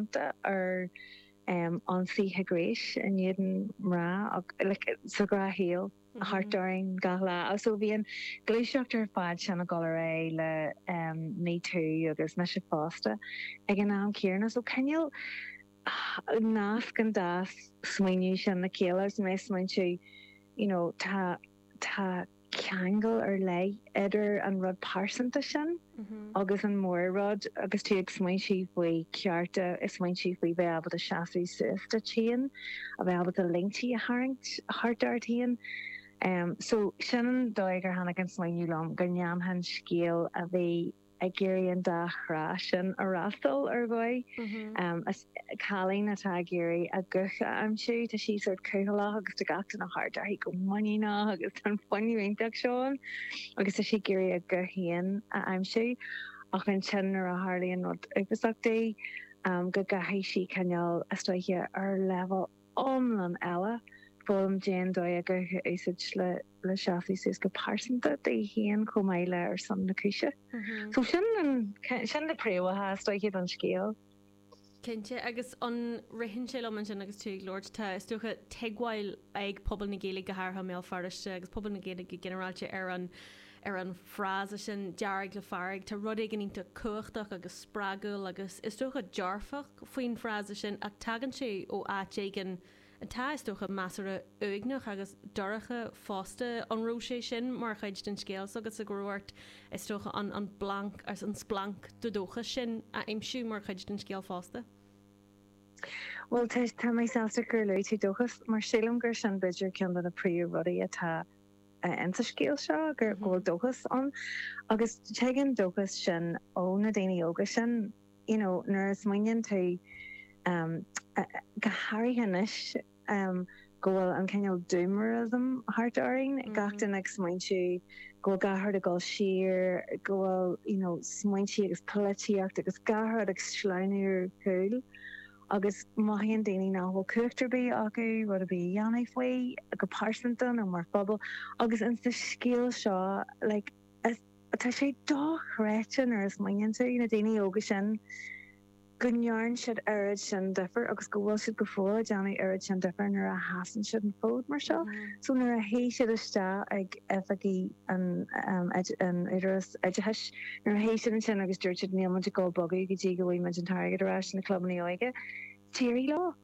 déanta ar ionsaithe gnéis in éadan mná sa ghnáthshaol thart orainn gach lá. So bhí an ghluaiseacht ar fad sin ag dul ar aghaidh le MeToo agus mise fosta ag an am céarna. So cineál nasc an dá smaoineamh sin le chéile is mé ag smaointiú, you know, tá, tá. ceangal ar leith idir an rud pearsanta sin agus an mhór-rud agus tú ag smaointiú faoi chearta, ag smaointiú faoi bheith ábalta seasamh suas duit féin, a bheith ábalta línte a tharraingt thart ort féin. So, sin an dóigh ar tháinig an smaoineamh liom go ndéanfainn scéal a bhí. ag iarraidh an dá thrá sin a fhreastal ar dhóigh. Cailín atá ag iarraidh a guth a aimsiú. Tá sí sórt cúthaileach agus tá gach duine thart uirthi go muiníneach agus tá fuinneamh iontu seo agus tá sí ag iarraidh a guth féin a aimsiú ach ansin nuair a tharlaíonn rud uafasach di go gcaithfidh sí cineál istigh ar leibhéal iomlán eile. Foghlaim faoin dóigh a guth a úsáid le seasamh suas go pearsanta di féin chomh maith le ar son na cúise. So sin an, sin na príomhaitheas taobh thiar den scéal. Cinnte, agus an ritheann sé liom ansin agus tú ag labhairt, tá is dócha tuigbheáil ag pobal na Gaeilge go hairithe i mBéal Feirste agus pobal na Gaeilge go ginearálta ar an ar an frása sin 'dearg le fearg', tá rud éigin iontach cumhachtach agus spreagúil agus, is dócha, dearfach faoin frása sin ach tagann sé ó áit éigin atá, is dócha, measartha uaigneach agus dorcha fosta. An raibh sé sin mar chuid den scéal s'agatsa, go raibh ort, is dócha, an planc, an splanc de dhóchas sin a aimsiú mar chuid den scéal fosta? Bhuel, tá mé sásta gur luaigh tú dóchas, mar sílim gur sin b'fhéidir ceann de na príomhrudaí atá. ins an scéal seo, go bhfuil dóchas ann. Agus tig an dóchas sin ó na daoine óga sin, you know, nuair a smaoiníonn tú, go háirithe anois go bhfuil an cineál doomerism thart orainn, gach duine ag smaointiú go bhfuil gach rud ag dul siar, go bhfuil, you know, smaointe agus polaitíocht agus gach rud ag sleamhnú ar gcúl. agus mothaíonn daoine nach bhfuil cumhacht ar bith acu rud ar bith a dhéanamh faoi, go pearsanta nó mar phobal, agus in sa scéal seo, like, is, tá sé dochreidte nuair a smaoiníonn tú, na daoine óga sin, go ndearn siad oiread sin difir agus go bhfuil siad go fóill ag déanamh oiread sin difir nuair a sheasann siad an fód mar seo, so nuair a shuigh siad isteach ag oifigí. an Údarás Oideachais nuair a sheas siad ansin agus dúirt siad níl muid ag dul a bhogadh go dtí go bhfaighidh muid an t-airgead ar ais, na clubannaí óige, d'éirigh leo!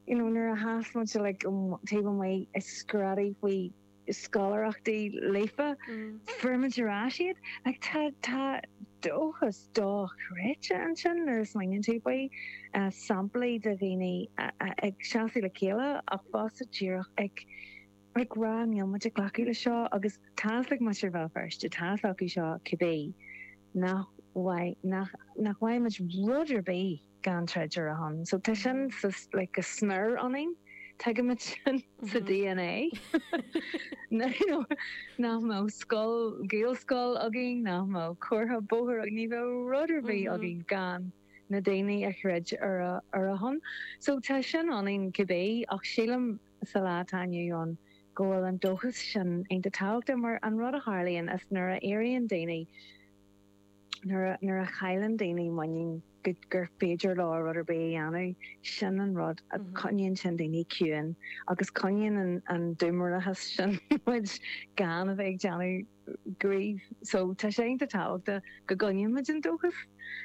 You know nuair a sheas muid like taobh amuigh ag screadaigh faoi scoláireachtaí Líofa, fuair muid ar ais iad! Like tá tá dóchas dochreidte ansin nuair a smaoiníonn tú faoi, samplaí de dhaoine ag seasamh le chéile ach fosta díreach ag, Ag rá níl muid ag glacadh leis seo agus tá's ag muintir Bhéal Feirste, tá's acu seo cibé, nach bhfaighidh, nach, nach bhfaighidh muid rud ar bith gan troid ar a shon. So tá sin sa, like, go smior ionainn, tuigimid sin sa dna, you know, nach mbeadh scoil, Gaelscoil againn, nach mbeadh comhartha bóthair againn, ní bheadh rud ar bith againn gan na daoine a throid ar a, ar a shon. So tá sin ionainn cibé ach sílim, sa lá atá inniu ann go bhfuil an dóchas sin iontach tábhachtach mar an rud a tharlaíonn is nuair a éiríonn daoine, nuair a chailleann daoine muinín gur féidir leo rud ar bith a dhéanamh, sin an rud, coinníonn sin daoine ciúin agus coinníonn an diomrachas sin muid gan a bheith ag déanamh. gcraobh. So tá sé iontach tábhachtach go gcoinnímid an dóchas.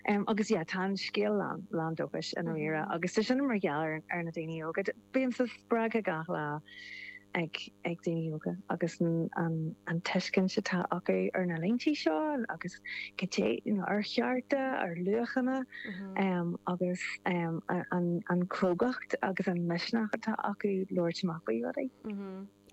Agus yeah, tá an scéal lán, lán dóchais i ndáiríre. Agus tá sin mar gheall ar na daoine óga. Bímse spreagtha gach lá ag, ag daoine óga agus an, an tuiscint atá acu ar na laethanta seo agus goidé, you know, ar chearta, ar luachanna agus an, an crógacht agus an misneach atá acu labhairt amach faoi rudaí.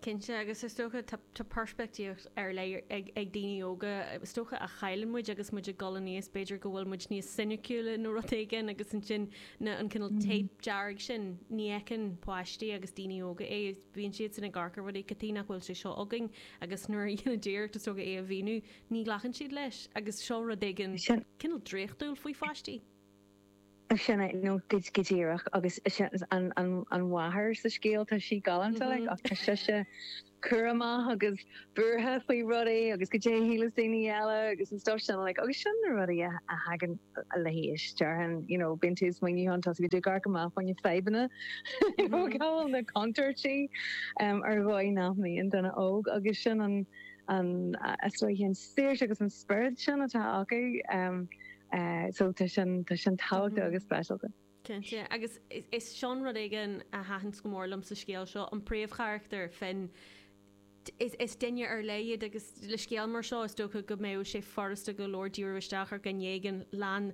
Cinnte, agus is dócha, tá peirspictíocht ar leith ag daoine óga, is dócha, a chailleann muid agus muid ag dul aníos, b'fhéidir go bhfuil muid níos soiniciúla nó rud éigin agus ansin na, an cineál téip dearg sin, ní fheiceann páistí agus daoine óga é, bíonn siadsan ag amharc ar rudaí, cad chuige nach bhfuil sé seo againn agus nuair a dhéanann tú iarracht, is dócha, é a mhíniú, ní ghlacann siad leis agus seo rud éigin cineál draíochtúil faoi pháistí. Sin é, nó go díreach, agus sin an mháthair sa scéal, tá sí galánta, like, ach tá sise cúramach agus buartha faoi rudaí agus goidé shíleas daoine eile agus an stuff sin, like, agus sin na rudaí a thagann le haois, déarfainn, you know, bíonn tú ag smaoineamh chun, tosaigh ag amharc amach, faoi na fadhbanna, you know, cá bhfuil na contúirtí ar dhóigh nach mbíonn an duine óg agus sin an, an, I suppose, an saoirse agus an spiorad sin atá acu. Eh so tá sin tá sin tábhachtach agus speisialta. Cinnte, agus is sin rud éigin a thaithin go mór liom sa scéal seo, an príomhcharachtar, Fionn, is duine ar leith iad agus le scéal mar seo is dócha go mbeadh sé furasta go leor díriú isteach ar dhuine éigin lán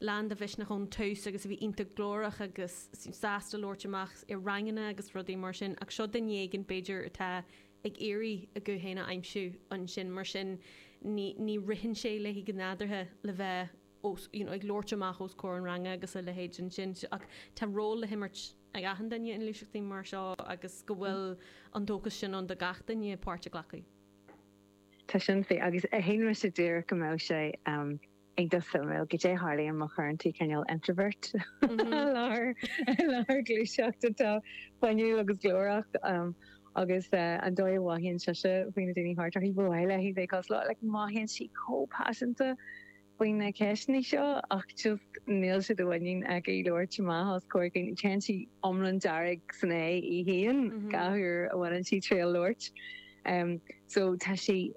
lán de mhisneach ón tús agus a bhí iontach glórach agus sásta labhairt amach i ranganna agus rudaí mar sin ach seo duine éigin b'fhéidir atá ag iarraidh a guth féin a aimsiú ansin, mar sin ní ní ritheann sé léi go nádúrtha le bheith os you know ag labhairt amach os comhair an ranga agus a leithéid ansin. Ach tá ról le himirt ag achan duine i ngluaiseachtaí mar seo agus go bhfuil an dóchas sin ann do gach duine páirt a ghlacadh. Tá sin fíor. Agus díreach ag do shamhail, goidé tharlaíonn má chuireann tú cineál introvert i láthair i láthair gluaiseacht atá fuinniúil agus glórach agus an dóigh a mhothaíonn sise faoi na daoine thart uirthi. Ba mhaith léi bheith ag cosúil le, like mothaíonn sí chomh paiseanta faoi na ceisteannaí seo ach just níl sé de mhuinín aici labhairt amach os comhair dhaoine. Téann sí iomlán dearg san éadan gach uair a bhaineann sí triail labhairt. so tá sí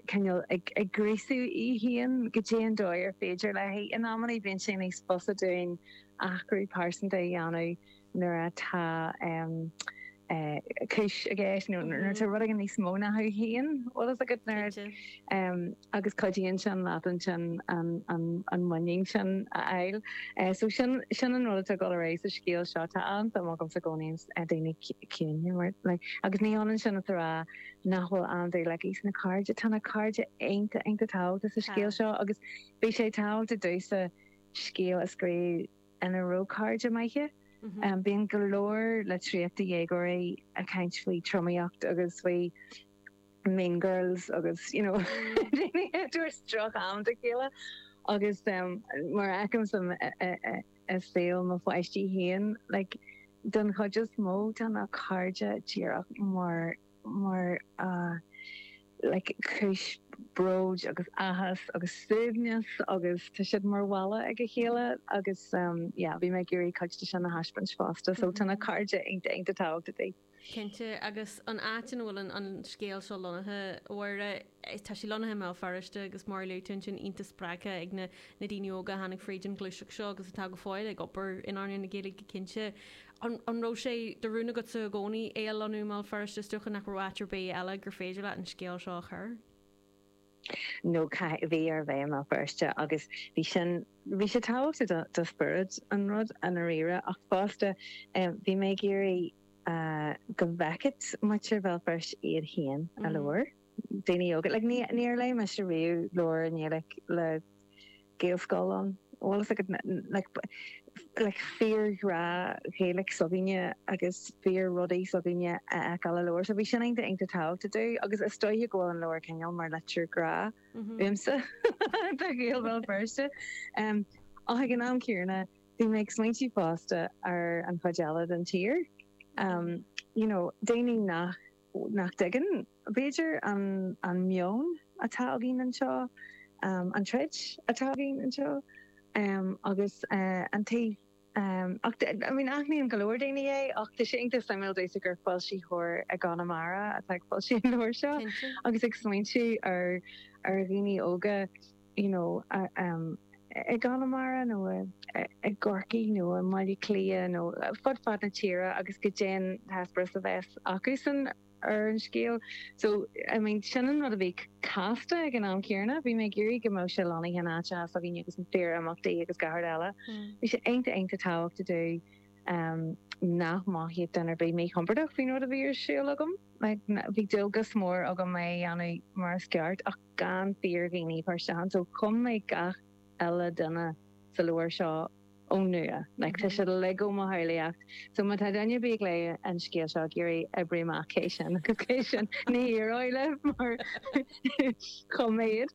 cineál ag gríosú í féin goidé an dóigh ar féidir léi. In amannaí bíonn sé níos fusa dúinn athrú pearsanta a dhéanamh nuair atá cúis i gceist nó nuair atá rud éigin níos mó ná thú féin. Bhfuil fhios agat nuair a. agus cuidíonn sin leat ansin an muinín sin a fháil. So sin sin an rud atá ag dul ar aghaidh sa scéal seo. Tá an-suim agamsa i gcónaí i ndaoine ciúine like agus ní hionann sin is a rá nach bhfuil an-dúil like ins na cairde, tá na cairde iontach iontach tábhachtach sa scéal seo agus bhí sé tábhachtach domhsa scéal a scríobh ina raibh cairde maithe. Bíonn go leor litríochta dhéagóirí ag caint faoi tromaíocht agus faoi. mean girls agus you know daoine ag tabhairt drocham do chéile agus mar a fheicimse i saol mo pháistí féin like don chuid is mó tá na cairde díreach mar mar like cúis bróid agus áthas agus suaimhneas agus tá siad mar bhalla ag a chéile agus yeah bhí mé ag iarraidh cuid de sin a thaispeáint fosta so tá na cairde iontach iontach tábhachtach Cinnte, agus an áit ina bhfuil an scéal seo lonnaithe, a Mháire, tá sé lonnaithe i mBéal Feirste agus mar a luaigh tú ansin, iontach spreagtha ag na daoine óga a tháinig fríd an ghluaiseacht seo agus atá go fóill ag obair in earnáil na Gaeilge go cinnte. An raibh sé de rún agatsa i gcónaí é a lonnú i mBéal Feirste? Is dócha nach raibh áit ar bith eile gur féidir leat an scéal seo a chur. nó caithfidh, bhí air bheith i mBéal Feirste agus bhí sin, bhí sé tábhachtach do, do spiorad an ruda i ndáiríre ach fosta bhí mé ag iarraidh go bhfeicfeadh muintir Bhéal Feirste iad féin i leabhar, daoine óga, like níor léigh mise riamh leabhar i nGaeilge le Gaelscoileanna, bhfuil fhios agat, like fíor ghrá Ghaeilic s'againne agus fíor rudaí s'againne a fheiceáil i leabhar. So bhí sin iontach iontach tábhachtach domh agus is dóiche go bhfuil an leabhar cineál mar litir grá uaimse do Ghaeil Bhéal Feirste. Em ach ag an am céanna bhí mé ag smaointiú fosta ar an chuid eile den tír. Em you know daoine nach nach dtuigeann. b'fhéidir an meon atá againn anseo, an troid atá againn anseo agus an taobh ach aithníonn go leor daoine é ach tá sé iontach suimiúil domhsa gur foilsitheoir i gConamara atá ag foilsiú an leabhair seo agus ag smaointiú ar dhaoine óga you know i gConamara nó i gCorcaigh nó i mBaile Átha Cliath nó fud fad na tíre agus goidé an t-eispéireas a bheas acusan. ar an scéal. So, I mean, sin an rud a bhí casta ag an am céanna. Bhí mé ag iarraidh go mbeadh sé lonnaithe in áiteacha s'againne agus fíor-imeachtaí agus gach rud eile. Bhí sé iontach iontach tábhachtach domh um, nach mothódh duine ar bith míchompordach faoin rud a bhí ar siúl agam. Like, bhí dualgas mór agam é a dhéanamh mar is ceart ach gan fíordhaoine páirteach ann. So chum mé gach uile duine sa leabhar seo. ón nua. Like tá siad uilig ó mo shamhlaíocht. So má tá duine ar bith ag léamh an scéal seo ag iarraidh oibriú amach cé sin agus cé sin, ní éireoidh libh mar chum mé iad.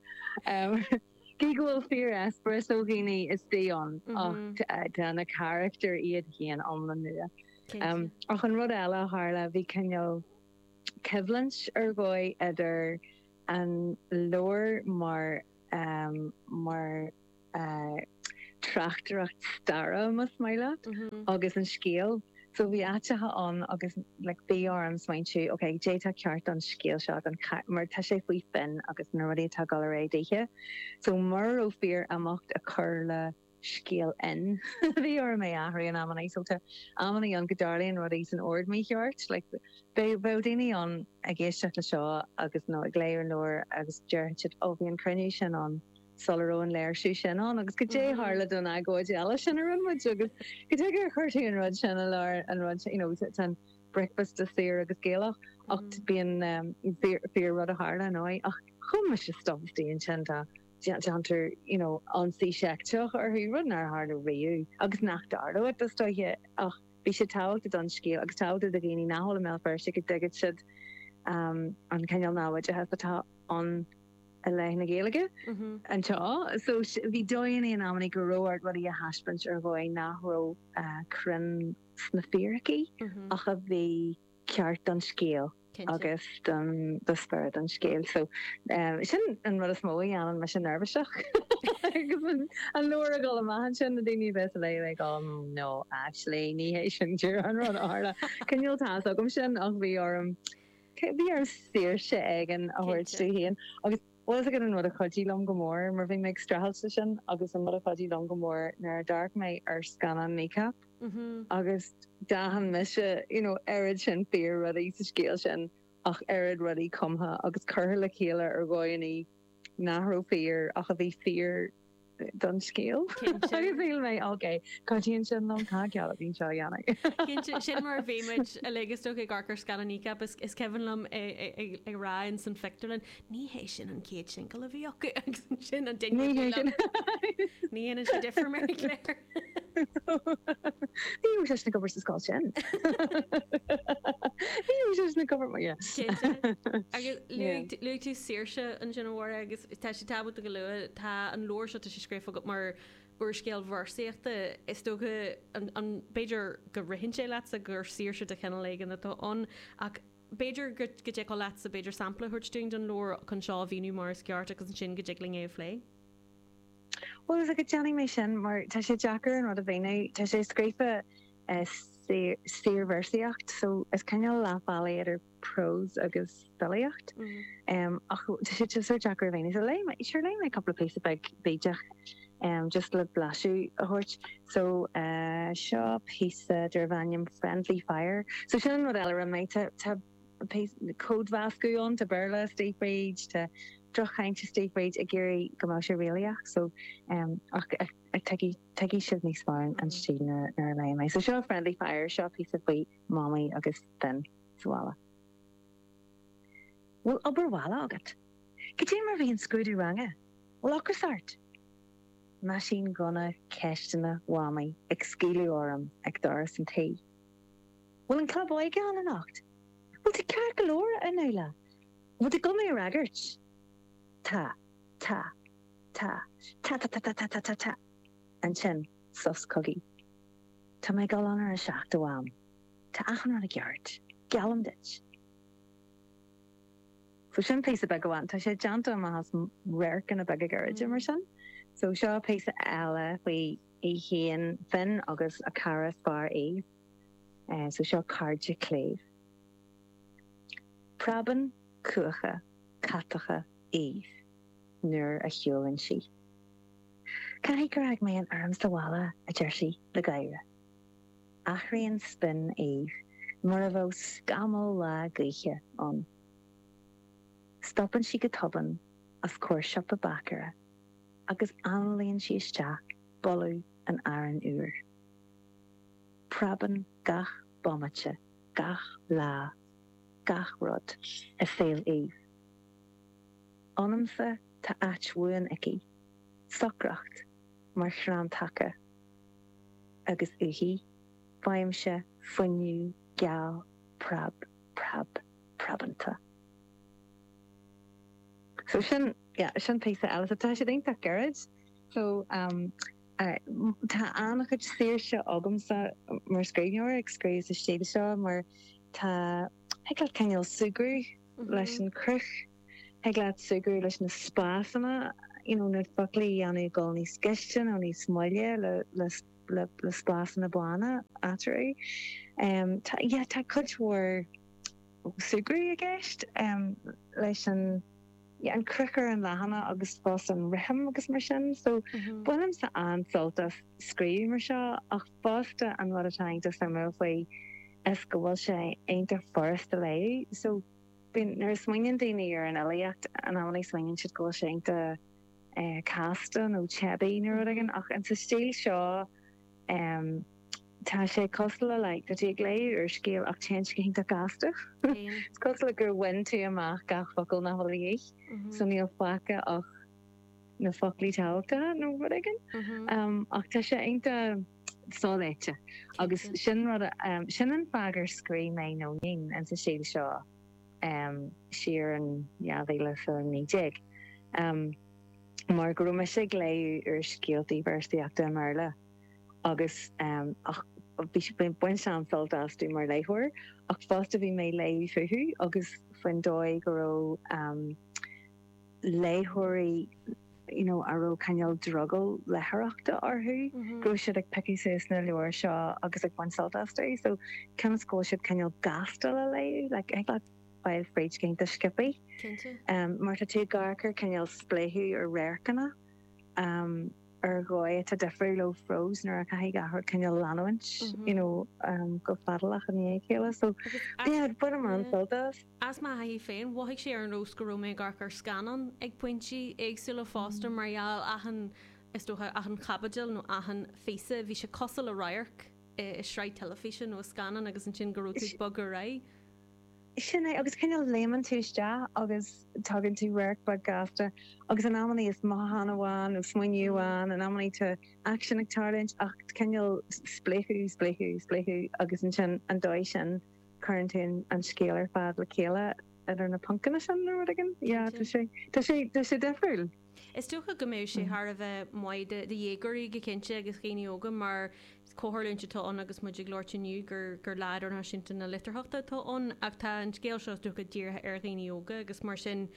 Gidh go bhfuil fíor-eispéireas ó dhaoine istigh ann ach tá na carachtair iad féin iomlán nua. Ach an rud eile a tharla, bhí cineál coimhlint ar dhóigh idir an leabhar mar. tráchtaireacht staire más maith leat agus an scéal. So bhí áiteacha ann agus like bhí orm smaointiú ok goidé atá ceart don scéal seo don mar tá sé faoi Finn agus na rudaí atá ag dul ar aghaidh daoithe. So mura raibh fíor-imeacht ag cur le scéal Fhinn bhí orm é athrú in amannaí. So tá amannaí ann go dtarlaíonn rudaí san ord mícheart like bheadh bheadh daoine ann ag éisteacht le seo agus nó ag léamh an leabhair agus déarfadh siad ó bhí an cruinniú sin ann sula raibh an léirsiú sin ann, agus goidé a tharla don agóid eile sin a rinne muid, agus cad chuige ar chuir tú an rud sin i lár an rud sin, you know, tá an bricfeasta saor agus Gaelach, ach bíonn, em, fíor, fíor rud a tharla, ar ndóigh, ach chum mise stuff istigh ansin, tá, déantar, you know, ionsaí seicteach orthu, rud nár tharla riamh, agus nach dtarlóidh, is dóiche, ach bhí sé tábhachtach don scéal, agus tábhachtach do dhaoine nach bhfuil i mBéal Feirste, go dtuigfeadh siad, em, an cineál naimhdeachas atá ann. i leith na Gaeilge anseo. So bhí dóigheannaí in amannaí go raibh ort rudaí a thaispeáint ar dhóigh nach raibh cruinn sna fíricí ach a bhí ceart don scéal agus don do spiorad an scéil. So sin an rud is mó a dhéanann mise neirbhíseach agus an leabhar ag dul amach ansin, na daoine a bheas á léamh ag dul no actually ní hé sin díreach an rud a tharla. Cineál tá's agam sin ach bhí orm. Cé a bhí orm saoirse éigin a thabhairt Cinnte. domh féin? Agus bhfuil's agat, an rud a chuidigh liom go mór, mar bhí mé ag streachailt leis sin, agus an rud a chuidigh liom go mór nuair a d'amharc mé ar scannán Kneecap agus d'aithin mise you know oiread sin fíor-rudaí sa scéal sin ach oiread rudaí cumtha agus curtha le chéile ar dhóigheannaí nach raibh fíor ach a bhí fíor don scéal. Cinnte. Shíl mé, OK, cuidíonn sin liom, tá cead againn seo a dhéanamh? Cinnte, sin mar a bhí muid uilig is dócha ag amharc ar scannán Kneecap is is cuimhin liom ag rá in san phictiúrlann, ní hé sin an chéad singil a bhí acu agus sin an ding Ní hé sin. Ní hé sin difriúil mé léir. Ní raibh seisean ag obair sa scoil sin. Ní raibh seisean ag obair mar dhea. Cinnte. Agus luaigh tú, luaigh tú saoirse ansin, a Mháire, agus tá sé tábhachtach a lua, tá an leabhar seo, tá sé scríofa agat mar úrscéal véarsaíochta, is dócha, an, an, b'fhéidir go ritheann sé leatsa gur saoirse de chineál éigin atá ann, ach b'fhéidir go, go dtiocfadh leatsa b'fhéidir sampla a thabhairt dúinn den leabhar chun seo a mhíniú mar is ceart agus ansin go dtig linn é a phlé? Bhfuil's agat, déanfaidh mé sin, mar tá sé deacair an rud a mhíniú. Tá sé scríofa i saorvéarsaíocht, so is cineál leath bealaigh idir prós agus filíocht. Ach tá sé just sórt deacair a mhíniú. So léifidh mé, sure, léifidh mé cúpla píosa beag bídeach, just le blaiseadh a thabhairt. So, seo píosa darb ainm Friendly Fire. So sin an rud eile a rinne mé. Tá, tá. códmheascadh ann, tá Béarla istigh fríd, tá drochchaint istigh fríd ag iarraidh go mbeadh sé réalaíoch so ach tuigfidh tuigfidh sibh níos fearr an stíl nuair nuair a léifidh mé. So seo Friendly Fire, seo píosa faoi Mamaí agus Finn sa bhaile. Bhfuil obair bhaile agat? Cad é mar bhí an scrúdú ranga? Bhfuil ocras ort? Meaisínghunna ceisteanna Mhamaí ag scaoileadh orm ag doras an tí. Bhfuil an club óige ann anocht? Bhfuil tú ceart go leor, a Nuala. Bhfuil tú ag dul mé a fhreagairt. Tá, tá, tá, ta-ta-ta-ta-ta-ta-ta-ta. Ansin, sos cogaidh. Tá mé ag dul ann ar a seacht a Mham. Tá achan rud i gceart, geallaim duit. So, sin píosa beag amháin. Tá sé déanta amach as radharcanna beaga gairide, mar sin. So, seo píosa eile faoi í féin, Finn, agus a cara is fearr, Eve. So seo cairde cléibh. Preabann cuacha catacha Eve nuair a shiúlann sí. Caithfidh gur fhág mé an fheirm sa bhealach, a deir sí le gáire. Athraíonn spin Eve mar a bheadh scamall lá gaoithe ann. Stopann sí go tobann os comhair siopa báicéara agus análaíonn sí isteach boladh an aráin úir. Preabann gach bomaite, gach lá, gach rud i saol Eve. Ionamsa tá áit bhuan aici, socracht mar chrann taca, agus uaithi faighimse fuinneamh geal preab preab preabanta. So sin, yeah, sin píosa eile. So tá siad iontach gairid. So, um. Tá an-chuid saoirse agamsa mar scríbhneoir ag scríobh sa stíl seo mar tá, thig leat cineál súgradh leis an chruth, thig leat súgradh leis na spásanna, you know, na foclaí a dhéanamh ag dul níos gaiste nó níos moille le spásanna bána eatarthu. Tá, yeah, tá cuid mhór súgradh i gceist leis an. yeah an chruth ar an leathanach agus fosta an rithim agus mar sin so bainim-se an-sult as scríobh mar seo ach fosta an rud atá iontach suimiúil faoi is go bhfuil sé iontach furasta léamh so bíonn nuair a smaoiníonn daoine ar an fhilíocht an amannaí smaoiníonn siad go bhfuil sé iontach eh, casta nó teibí nó rud éigin ach an sa stíl seo em tá sé cosúil le like tá tú ag léamh úrscéal ach téann sé go hiontach gasta is cosúil le gur bhain tú amach gach focal nach bhfuil de dhíth so mhm. níl faice ach na foclaí tábhachtacha nó rud éigin mhm. em ach tá sé iontach soléite agus sin rud a- em sin an fáth gur scríobh mé nó Nóinín sa stíl seo em siar in 2019 em mar go raibh mise ag léamh úrscéalta véarsaíochta i mBéarla agus ach bhí mé ag baint an-sult astu mar léitheoir ach fosta bhí mé ag léamh fúthu agus faoin dóigh go raibh léitheoirí you know a raibh cineál drogall leitheoireachta orthu go raibh siad ag piocadh suas na leabhair seo agus ag baint sult astu so cionn is go bhfuil siad cineál gasta le léamh like I thought File fríd cinn do Skippy. Cinnte. Mar tá tú ag amharc ar cineál spléachadh ar radharcanna, ar dhóigh atá difriúil ó phrós nuair a chaithfidh gach rud cineál leanúint, you know, go fadálach i ndiaidh a chéile. So, yeah, bainim an-sult as. As mo thaithí féin, mhothaigh sé ar an nós go raibh mé ag amharc ar scannán ag pointí éagsúla fosta mar gheall achan, is dócha, achan chaibidil nó achan phíosa, bhí sé cosúil le radharc i sraith teilifíse nó i scannán agus ansin go raibh tú ag bogadh ar aghaidh. Sin é, agus cineál léimeann tú isteach agus tugann tú radharc beag gasta agus in amannaí is mothúchán amháin nó smaoineamh amháin, in amannaí tá aicsean ag tarlúint ach cineál spléachadh, spléachadh, spléachadh agus ansin an dóigh sin cuireann tú an scéal ar fad le chéile idir na poncanna sin nó rud éigin. Yeah, tá sé, tá sé, tá sé difriúil. Is dócha go mbeidh sé thar a bheith maith do dhéagóirí go cinnte, agus do dhaoine óga, mar comhtharlúint atá ann agus muid ag labhairt inniu gur Lá Idirnáisiúnta na Litearthachta atá ann, ach tá an scéal seo is dócha dírithe ar dhaoine óga agus mar sin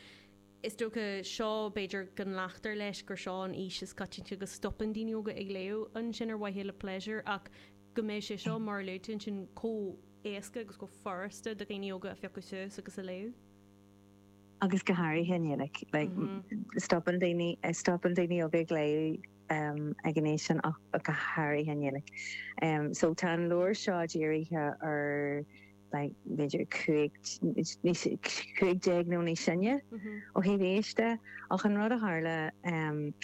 is dócha seo b'fhéidir go nglactar leis gur seo an aois is coitianta go stopann daoine óga ag léamh, ansin ar mhaithe le pléisiúr, ach go mbeidh sé seo, mar a luaigh tú, ansin chomh héasca agus chomh furasta do dhaoine óga a phiocadh suas agus a léamh. agus go háirithe i nGaeilge. Stopann daoine, stopann daoine óga ag léamh ag an aois sin ach go háirithe i nGaeilge. So tá an leabhar seo dírithe ar b'fhéidir cúig, cúig déag nó níos sine ó thaobh aois de. Ach an rud a tharla,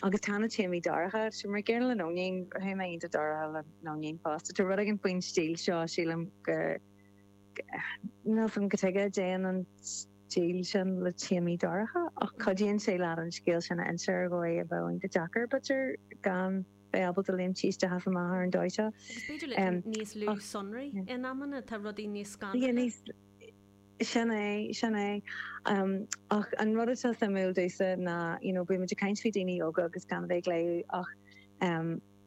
agus tá na téamaí dorcha, so mar gcéanna le Nóinín, téama iontach dorcha le Nóinín fosta. Tá rud éigin faoin stíl seo, sílim, go. Níl a fhios agam cad chuige a dtéann an stíl sin le téamaí dorcha, ach cuidíonn sé leat an scéal sin a inse ar dhóigh a bheadh iontach deacair, b'fhéidir, gan bheith ábalta léimt isteach is amach ar an dóigh seo. Agus b'fhéidir le níos lú sonraí in amanna, tá rudaí níos scanraithe. Sin é, sin é. Ach an rud atá suimiúil domhsa ná, you know, bímid ag caint faoi daoine óga agus gan a bheith ag léamh ach.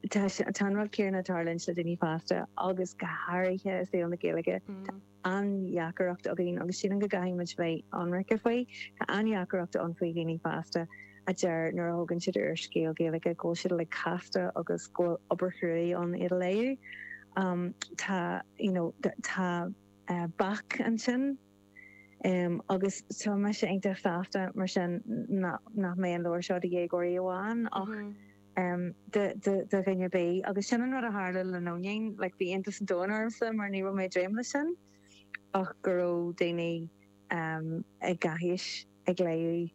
Tá an rud céanna ag tarlúint le daoine fásta agus go háirithe i saol na Gaeilge. Tá an-dheacaireacht againn agus sílim go gcaithfidh muid bheith ionraice faoi. Tá an-dheacaireacht ann faoi dhaoine fásta a deir nuair a thógann siad úrscéal Gaeilge go bhfuil siad uilig casta agus go bhfuil obair chruaidh ann iad a léamh. Tá you know tá bac ansin. Agus tá mise iontach sásta mar sin nach mbeidh an leabhar seo do dhéagóirí amháin ach do dhuine ar bith. Agus sin an rud a tharla le Nóinín, like bhí iontas an domhain ormsa mar ní raibh mé ag dréim leis sin ach go raibh daoine ag gach aois ag léamh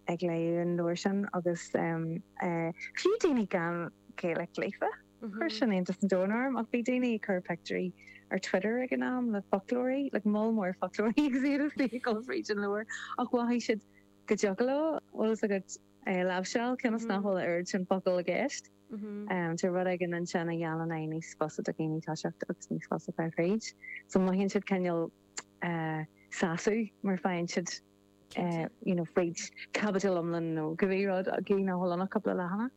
ag léamh an leabhair sin agus fiú daoine gan Gaeilge líofa. Chuir sin iontas an domhain orm ach bhí daoine ag cur pictiúirí ar Twitter ag an am le foclóirí, like moll mór foclóirí agus iad istigh ag dul fríd an leabhar ach mhothaigh siad go dtiocfadh leo bhfuil a fhios agat é a láimhseáil cionn is nach bhfuil a oiread sin focal i gceist. Tá rud éigin ansin a dhéanann é níos fusa do dhaoine toiseacht agus níos fusa fáil fríd so mothaíonn siad cineál sásamh mar faigheann siad you know fríd caibidil iomlán nó cibé rud gidh nach bhfuil ann ach cúpla leathanach.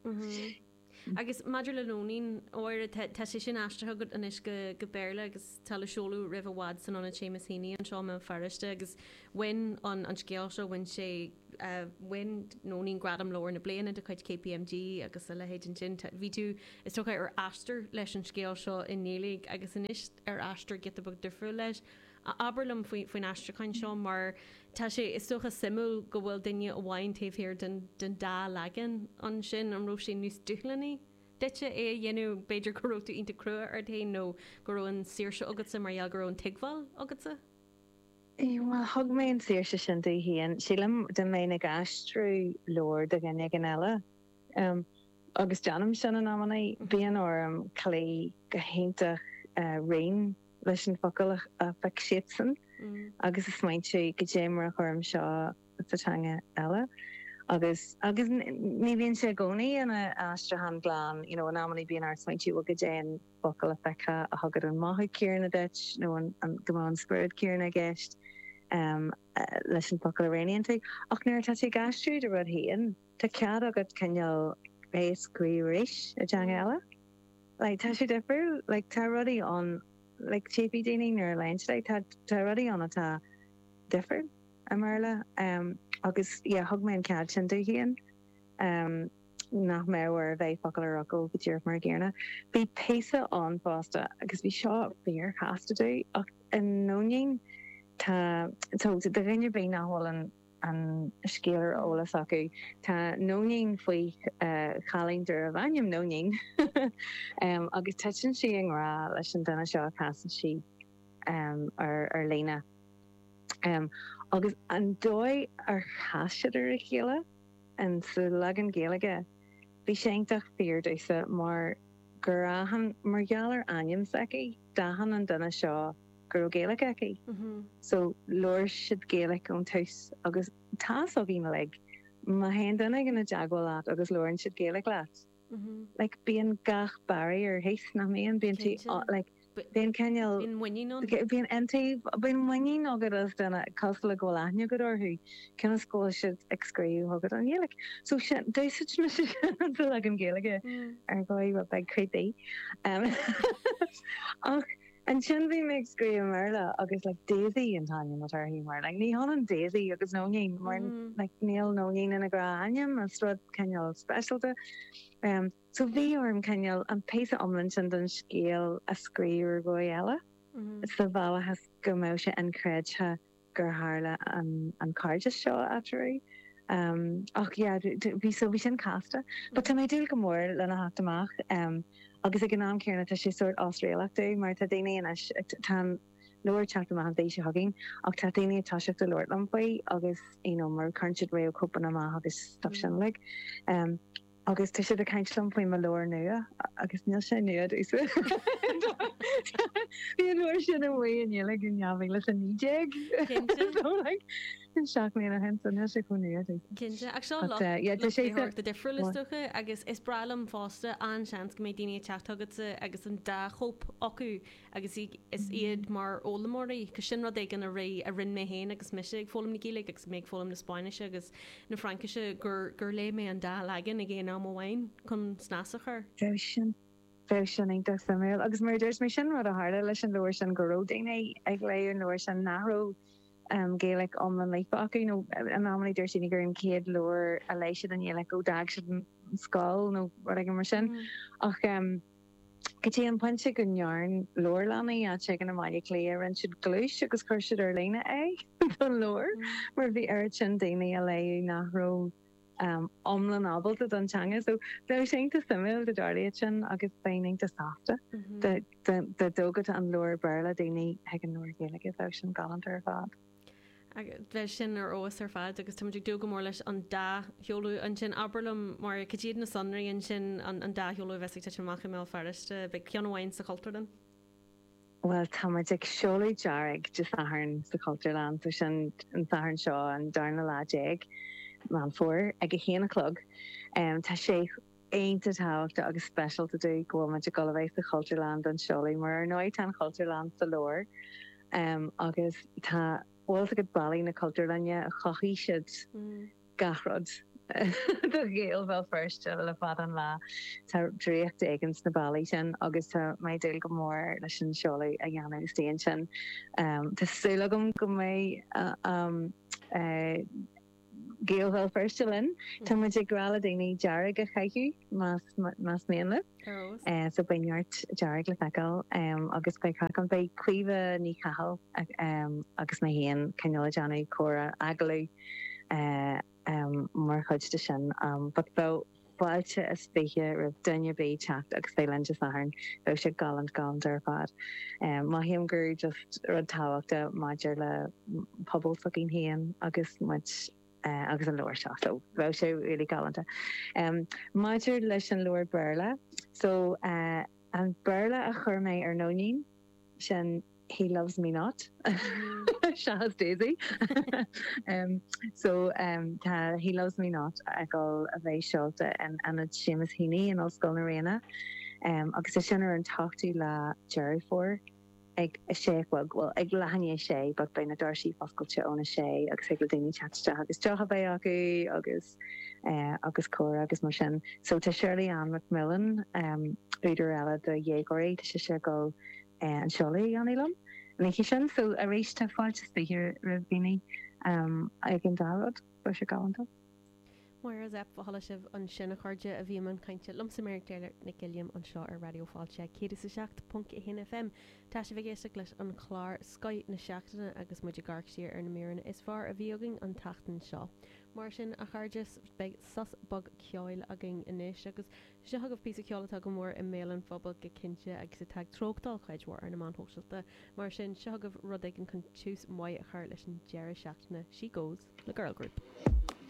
Agus maidir le Nóinín, óir tá sé sin aistrithe agat anois go Béarla agus tá le seoladh roimh i bhfad san Ionad Seamus Heaney anseo i mBéal Feirste agus bhain an an scéal seo, bhain sé, bhain Nóinín gradam Leabhar na Bliana de chuid KPMG agus a leithéid ansin. Tá, bhí tú, is dócha, ar aistear leis an scéal seo i nGaeilge agus anois ar aistear giota beag difriúil leis. a abair liom faoin aistriúchán seo mar tá sé is dócha suimiúil go bhfuil duine amháin taobh thiar den dá leagan ansin. An raibh sé níos dúshlánaí duitse é a dhéanamh, b'fhéidir go raibh tú iontach crua ort féin nó go raibh an saoirse agatsa mar gheall go raibh an tuigbheáil agatsa? Bhuel, thug mé an saoirse sin dom féin, sílim, dá mbeinn ag aistriú leabhar do dhuine éigin eile, agus déanaim sin in amannaí, bíonn orm cloí go hiontach righin. leis an focal a phioc siadsan agus a smaointiú cad é mar a chuirim seo sa teanga eile. Agus, agus ní bhíonn sé i gcónaí ina aistriúchán glan, you know, in amannaí bíonn ort smaointiú cad é an focal a phiocfá a thugann an mothú céanna duit nó an, go mbeadh an spiorad céanna i gceist, em, leis an focal a roghnaíonn tú. Ach nuair atá tú ag aistriú do rud féin, Tá cead agat cineál é a scríobh arís i dteanga eile. Like, tá sé difriúil. Like, tá rudaí ann, like, tchífidh daoine nuair a léann siad é, tá, tá rudaí ann atá difriúil i mBéarla. Um agus, yeah, thug mé an cead sin dom féin um nach mbeadh orm bheith focal ar fhocal go díreach mar an gcéanna. Bhí píosa ann fosta agus bhí seo fíorchasta dom ach i Nóinín tá, so, do dhuine ar bith nach bhfuil an. an scéal ar eolas acu. Tá Nóinín faoi chailín darbh ainm Nóinín agus titeann sí i ngrá leis an duine seo a chasann sí air ar líne. Agus an dóigh ar chas siad ar a chéile? Sa leagan Gaeilge, bhí sé iontach fíor domhsa mar gur aithin, mar gheall ar ainm s'aici, d'aithin an duine seo, go raibh Gaeilge aici so labhair siad Gaeilge ón tús agus tá a fhios agaibh like má théann duine éigin i dteagmháil leat agus labhrann siad Gaeilge leat like bíonn gach barrier thíos nach mbíonn? Bíonn tú Cinnte. like bíonn cineál Bíonn muinín ann. like bíonn into bíonn muinín agat as duine cosúil le go bhfuil aithne agat orthu cionn is go bhfuil siad ag scríobh chugat i nGaeilge so sin d'úsáid mise sin an dul agam Gaeilge ar dhóigh rud beag creepy em ach Ansin bhí mé ag scríobh i mBéarla agus like Daisy an t-ainm atá uirthi mar like ní hionann Daisy agus Nóinín mar like níl Nóinín ina ghnáthainm is rud cineál speisialta em so bhí orm cineál an píosa iomlán sin den scéal a scríobh ar dhóigh eile sa bhealach is go mbeadh sé inchreidte gur tharla an cairdeas seo eatarthu. Ach yeah, bhí, so bhí sin casta. But tá mé ag dúil go mór lena theacht amach, agus ag an am céanna tá sé sórt osréalach domh, mar tá daoine anois, tá an leabhar ag teacht amach an mhí seo chugainn, ach tá daoine ag toiseacht a labhairt liom faoi, agus you know mar cuireann siad réamhchóipeanna amach agus stuff sin uilig. Agus tá siad ag caint liom faoi mo leabhar nua, agus níl sé nua domhsa, bhí an leabhar sin amuigh i nGaeilge in 2019, so like seacht mbliana ó shin, so níl sé chomh nua domhsa. Cinnte, ach seo lucht léitheoireachta difriúil is dócha, agus is breá liom fosta an seans go mbeidh daoine ag teacht chugatsa agus an dá chóip acu, agus is iad mar fhoghlaimeoirí, agus sin rud éigin a raibh, a rinne mé féin agus mise ag foghlaim na Gaeilge agus mé ag foghlaim na Spáinnise agus na Fraincise, gur, gur léigh mé an dá leagan ag aon am amháin chun snas a chur. Bheadh sin, bheadh sin iontach suimiúil, agus mar a dúirt mé, sin rud a tharla leis an leabhar sin, go raibh daoine ag léamh an leabhair sin nach raibh Gaeilge iomlán líofa acu, nó in amannaí dúirt daoine gur an chéad leabhar a léigh siad i nGaeilge ó d'fhág siad an scoil nó rud éigin mar sin, ach. go dtí an pointe go ndearn leabharlannaí áit éigin i mBaile Átha Cliath, rinn siad gluais agus chuir siad ar líne é don leabhar mar bhí oiread sin daoine á léamh nach raibh iomlán ábalta don teanga. So bheadh sé iontach suimiúil dá dtarlaíodh é sin agus bheinn iontach sásta dá dtógfadh an leabhar Béarla daoine chuig an leabhar Gaeilge, bheadh sin galánta ar fad. bheadh sin ar fheabhas ar fad agus táimid ag dúil go mór leis an dá sheoladh ansin. Abair liom, a Mháire, cad iad na sonraí ansin, an an dá sheoladh a bheas ag titim amach i mBéal Feirste? Beidh ceann amháin sa Chultúrlann. Bhuel, táimid ag seoladh Dearg Dé Sathairn sa Chultúrlann, so sin an Satharn seo, an darna lá déag, Meán Fómhair, ag a haon a chlog. Tá sé. Iontach tábhachtach agus speisialta dúinn go bhfuil muid ag dul a bheith sa Chultúrlann don seoladh, mar ar ndóigh tá an Chultúrlann sa lár agus tá bhfuil 's agat ballaí na Cultúrlainne chothaigh siad gach rud do Ghaeil Bhéal Feirste le fada an lá. Tá draíocht éigin sna ballaí sin agus tá mé ag dúil go mór leis an seoladh a dhéanamh istigh ansin. Tá súil agam go mbeidh an. Gaeil Bhéal Feirste linn. Tá muid ag rá le daoine dearg a chaitheamh más mian leo. So beidh neart dearg le feiceáil agus beidh craic ann. Beidh Caoimhe Ní Chathail agus mé féin, cineál ag déanamh comhrá, agallamh mar chuid de sin. Fáilte is fiche roimh dhuine ar bith teacht agus bheith linn Dé Sathairn. Beidh sé galánta galánta ar fad. Mothaím gur just rud tábhachtach maidir le pobal s'againn féin agus muid agus an leabhar seo. So bheadh sé really galánta. Maidir leis an leabhar Béarla, so an Béarla a chuir mé ar Nóinín, sin. He loves me not, seachas Daisy. So, tá He loves me not ag gabháil a bheith seolta in Ionad Seamus Heaney in Ollscoil na Ríona agus tá sin ar an t-ochtú lá Deireadh Fómhair ag a sé a chlog, bhuel, ag leath i ndiaidh a sé, but beidh na doirse foscailte óna sé agus thig le daoine teacht isteach agus deoch a bheith acu agus agus comhrá agus mar sin. So, tá Shirley-Anne McMillen, údar eile do dhéagóirí, tá sise ag dul an seoladh a dhéanamh liom an oíche sin. So arís, tá fáilte is fiche roimh dhaoine ag an dá rud. Beidh sé galánta. Máire Zepf, Chuala sibh ansin, a chairde, a bhí i mbun cainte liomsa Mary Claire Nic Uilliam anseo ar Raidió Fáilte 107.1 FM. Tá sibh ag éisteacht leis an chlár Scoith na Seachtaine agus muid ag amharc siar ar na míreanna is fearr a bhí againn an tseachtain seo. Mar sin, a chairde, beidh sos beag ceoil againn anois agus. Seo chugaibh píosa ceoil atá go mór i mbéal an phobail go cinnte agus atá ag treochtáil cuid mhór ar na meáin shóisialta, mar sin seo chugaibh rud éigin chun tús maith a chur leis an deireadh seachtaine, 'She Goes' le Girl Group.